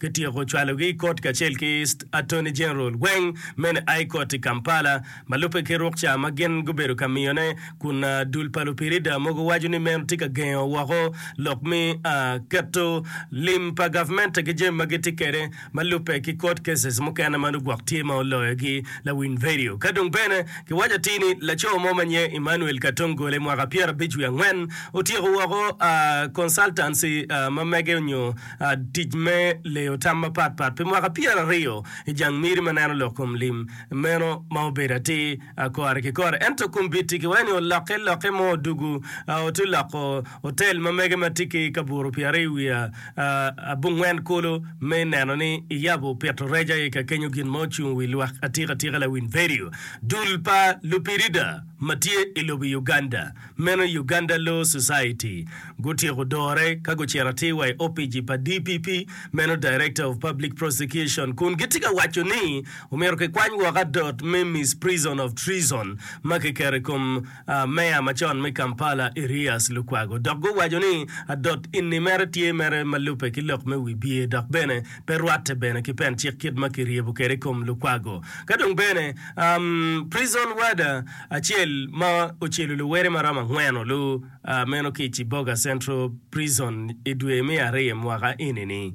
Kityeko cwalogi i kot kacel ki Attorney General Gweng mene High Court i Kampala ma lubbe ki rukca ma gin gubedo ka miyone kun dul pa lupirida mogo waco ni meno tye ka gengo woko lok me keto lim pa gavmente ki jami ma gitye kwede ma lubbe ki court cases mukene ma nongo gwok tye ma oloyogi lawiny vedio. Ka dong bene kiwaco atir ni laco mo ma nyinge Emmanuel Katongole mwaka pyerabic wiye angwen otyeko woko consultancy ma mege onyo tic me leyo tam mapat pat pi mwaka pyeraryo i jang miri ma neno lok kom lim meno ma obedo atir kore ki kore. Ento kombiti ki wayo ni olokke lokke mo odugu ote loko otel ma mege ma tye ki kaburu pi aryo wiye abongwen kulu me neno ni iyabo pito rec aye ka kenyo gin ma ocung wi lwak atika tika lawiny vedio dul pa lupirida ma tye i lobo Uganda. Meno Uganda Law Society gutyeko dore ka gucito atir wa i opici pa DPP, meno Director of Public Prosecution, kun gitye ka waco ni omyero kikwany woko adot me Misprison of Treason ma kiketo i kom Mayor macon me Kampala Erias Lukwago dok guwaco ni adot enni mere tye mere ma lubbe ki lok me wibye dok bene pe rwatte bene ki pen cik kit ma kiryebo kwede i kom Lukwago ka dong bene prison warder acel ma ocelo luwere maromo angwen-o lu meno ki i Ciboga Central Prison i dwe me ariyo mwaka eni-ni.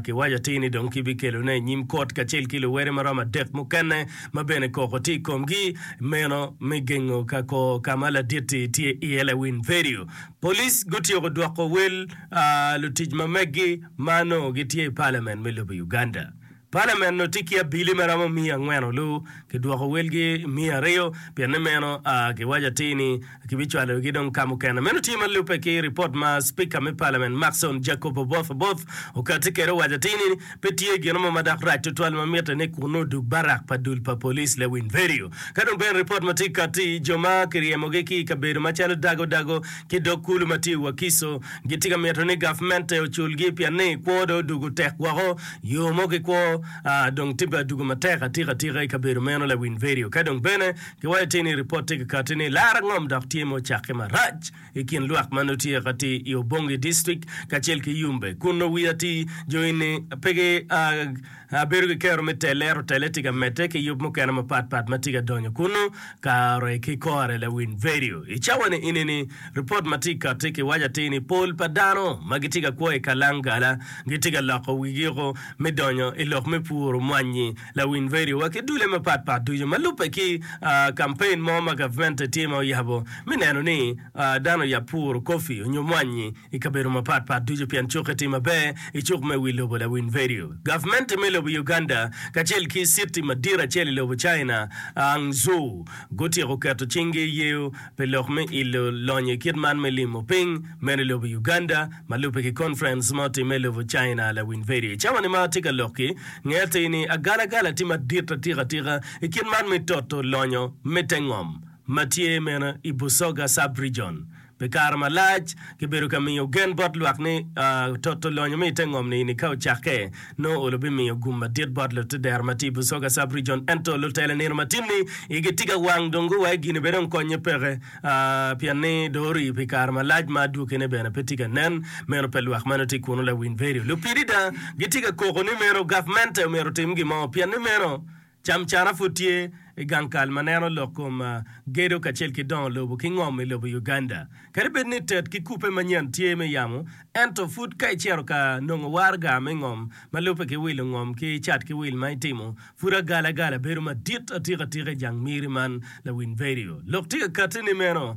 Kiwaco atir ni dong kibikelone i nyim kot kacel ki luwere maromo adek mukene ma bene koko tye i komgi meno me gengo ka kor ka ma ladit-ti tye iye lawiny Perio. Police gutyeko dwoko wel lutic ma meggi ma nongo gitye i Parliament me lobo Uganda. Palamen onongo tye ki abili ma romo miya angwen olu ki dwoko welgi miya aryo pien ni meno a ki waco atir ni ki bi cwalo gi dong ka mukene. Meno tye ma lubbe ki ripot ma Spika me Palamen Maxon Jacob Oboth Oboth okati kede owaco atir ni pe tye gino mo ma dok rac tutwal ma mitte ni kunnu odug barak pa dul pa police le winy verio ka dong bene ripot ma tye kati jo ma ki ryemo gi ki ikabedo ma calo Dago Dago ki dog kulu ma tye i Wakiso gi tye ka mito ni gavmente ocul gi pien ni kwo dong odugu tek woko Yo mo ki kwo, aa, dong tibbe adugo matek atika atika i kabedo meno lawiny vedio. Ka dong bene, giwayo ti ni ripot ti kakati ni lar angom dok tye ma ocakke marac i kin lwak ma nongo tye ka ti i Obongi District kacel ki Yumbe, kun nongo wi ati jo eni pe gi, aa, bedo ki kero me telle, ento telle ti ka medde ki yub mukene mapat pat ma ti ka donyo kunnu. Kare ki kore lawiny vedio i cawa-ni ini ni, Ripot ma tye kati kiwaco atir ni pol pa dano ma gitye ka kwo i kalangala gitye ka loko wigiko me donyo i lok me puro mwanyi. Lawiny vedio wa ki dulle mapat pat ducu ma lubbe ki kampen mo ma gavmente tye ma oyabo me neno ni dano oyab puro kofi onyo mwanyi i kabedo mapat pat ducu pien cokke tye maber i cuk me wi lobo lawiny vedio. Gavmente me lobo Uganda kacel ki citi madit acel i lobo China, Hangzhou, gutyeko keto cinggi i yeyo pi lok me ilo lonyo i kit man me limo piny meno i lobo Uganda ma lubbe ki conference ma otimme i lobo China lawiny vedio. I cawa ni ma atye ka lok-ki, nge atir ni agala gala tye madit atika tika i kit man me toto lonyo me te ngom ma tye meno i Busoga Sub-Region, Pi kare malac, kibedo ka miyo gen bot lwak ni toto lonyo me i te ngom-ni ni ka ocakke, nongo olo bimiyo gum madit bot lutedero ma tye i Busoga Sub-rijon. Ento, lutela nino ma tin-ni igi tye ka wang dong guwayo gin-ni bene dong konnye peke pien ni dong orii pi kare malac ma adwogine bene pe tye ka nen. Meno pe lwak ma nongo tye kunu lawiny vedio lupi dida gitye ka koko ni meno gavmente myero otim gin mo pien ni meno Camcana pud tye i gang kal ma neno lok kom gedo kacel ki dongo lobo ki ngom i lobo Uganda. Kadi bed ni tet ki kubbe manyen tye me yamo, ento pud ka icito ka nongo waraga me ngom ma lubbe ki wilo ngom ki cat ki wil ma itimo, pud agalagala bedo madit atika tika i jang miri man. Lawiny Vedio. Lok tika katti ni meno?